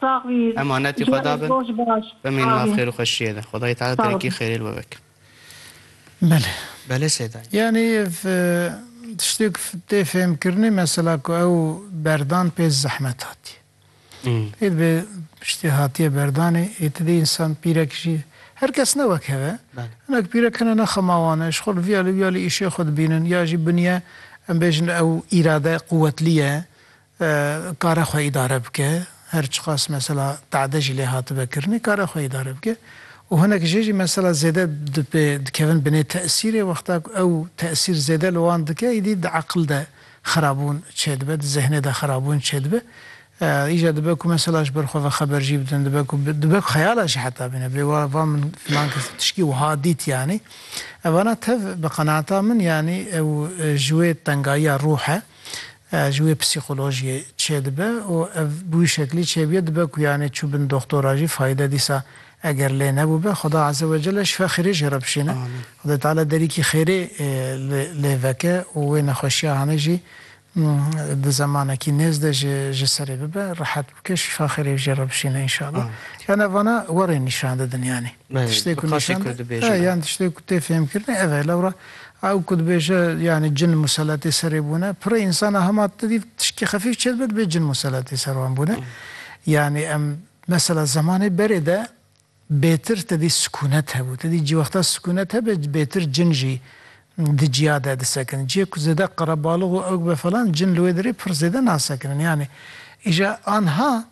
Sax bî. Emanetî Xwe da bin. Bimînin maf xêr û xweşiyê de. Xwedayê Teala terekî xêrê li we veke. Belê. Belê Sêdayî. Yanî ev tiştêk tê fêhmkirinê mesela ku ew berdan pê zehmet hatiye. Pê dibe piştî hatiye berdanê ê ti dê însan pîrek jî her kes ne wek hev e. Hinek pîrek hene ne xema wan e ji xwe li vîya li vîya li îşê xwe dibînin ya jî biniye em bêjin ew îrade quwetlî ye kare xwe îdare bike, her çiqas mesela tade jî lê hatibe kirinê kare xwe îdare bike û hinek jê jî mesela zêde dipê dikevin binê tesîrê wexta ku ew tesîr zêde li wan dike îdî di eqil de xerabûn çêdibe di zehnê de xerabûn çêdibe îja dibe ku mesela ji ber xwe ve xeber jî bidin dibe ku dibe ku xeyala jî heta bîne bê wa va min filan kes tişkî wiha dît yanî evana tev bi qenaata min yanî ew ji wê tengayiya ruh e ji wê psîkolojiyê çêdibe û ev bi wî şeklî çêbûye dibe ku yanî çû bin doxtora jî fayde dîsa eger lê nebûbe Xweda Eze Wecele şifa xêrê jê re bişîne. Xwedê Teala derîkî xêrê lê veke û wê nexweşiya hanê jî di zemanekî nêz de ji ji serê bibe, rehet bike, şifa xêrê jê re bişîne înşallah. Yan ev vana werên nîşan didin yanî. Tiştê ku nîşan da yan tiştê ku tê fêhmkirinê ev e. Lewra ew ku dibêje yanî cin museletê serê bûne, pirê însan a hema tide dî tişkî xefîf çê dibe dibê cin museletê ser wan bûne. Yanî em mesela zemanê berê de bêtir te dî sikûnet hebû. Te dî cîwexta sikûnet hebe bêtir cin jî di ciya de disekin. Ciyê ku zêde qerebalix û ewk be falan cin li wê derê pir zêde nasekinin. Yanî îja anha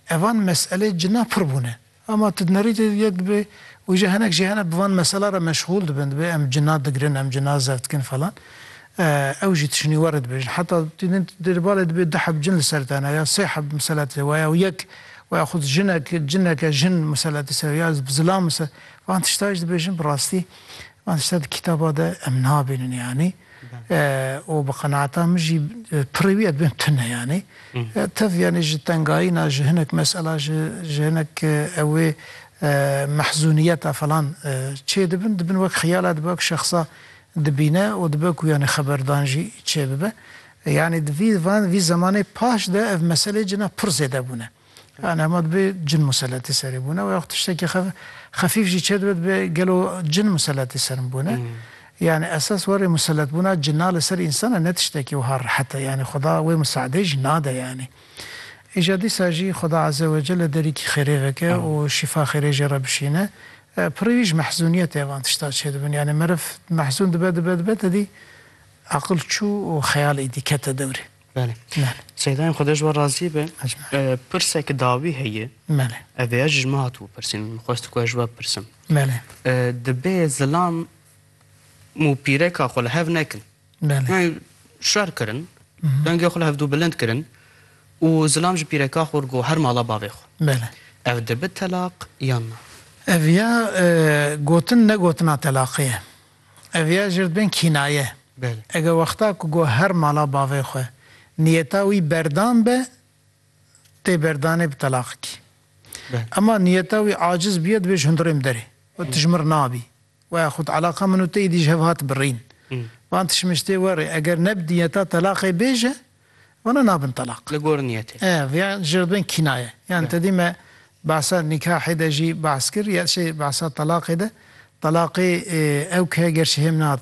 evan meselê cina pir bûne. Ama tu dinerî tu yek dibê û jî hinek jî hene bi van mesela re meşxûl dibin dibê em cina digirin em cina zef dikin falan ew jî tişinî we re dibêjin heta tu din tu di balê dibê du heb cin li ser te hene ya sê heb miselet li we ya û yek we ya xwed jinek cineke jin miselet li ser ya bi zilam miselet van tişta jî dibêjin bi rastî van tişta di kitaba de em nabînin yanî û bi qenaata min jî pirrî wî ya dibin tune yanî tev yanî ji tengayîna ji hinek mesela ji ji hinek ew ê mehzûniyeta falan çê dibin dibin wek xiyala dibe wek şexsa dibîne û dibe ku yanî xeberdan jî çê bibe. Yanî di vî van vî zemanê paş de ev meselê cina pirr zêde bûne. Yanî hema dibe cin museletî serê bûne û ya xwe tiştekî xefîf jî çêdibe dibe gelo cin museletî ser min bûne. Yanî esas warê museletbûna cina li ser însan e ne tiştekî wiha rehet e. Yanî xweda wê miseadeyê jî nade yanî. Îja dîsa jî xweda eze we celle derîkî xêrê veke û şîfa xêrê jê re bişîne. Pirrî wî ji mehzûniyetê van tişta çêdibin. Yanî meriv mehzûn dibe dibe dibe tedî aqil çû û xeyal êdî kete dewrê. Belê. Belê. Seydayên Xwedê ji we razî be. Pirsek dawî heye. Belê. Ev vêya jî ji min hatibû pirsîn. Min xwest ku ez ji we bipirsim. Belê. Dibe zilam û pîreka xwe li hev nekin. Belê. Yani şer kirin. Dengê xwe li hevdû bilind kirin û zilam ji pîreka xwe got her mala bavê xwe. Belê. Ev dibe telaq yan na? Ev ya gotin ne gotina telaqê ye. Ev ya jir dibin kînaye. Eger wexta ku got her mala bavê xwe niyeta wî berdan be tê berdanê bi telaqikî. Ema niyeta wî aciz bûye dibê ji hundirê min derê û tu ji min re nabî. Waya xwed eleqa min û te îdî ji hev hat birîn. Van tişmiştê werê eger ne bi niyeta telaqê bêje. Wana nabin telaq. Li gor niyetê. Ev ya jê re bên kînaye. Yan tedî me behsa nîkahê de jî behs kir ya jî behsa telaqê de. Telaqê ew ke gerşî hêm nehatine.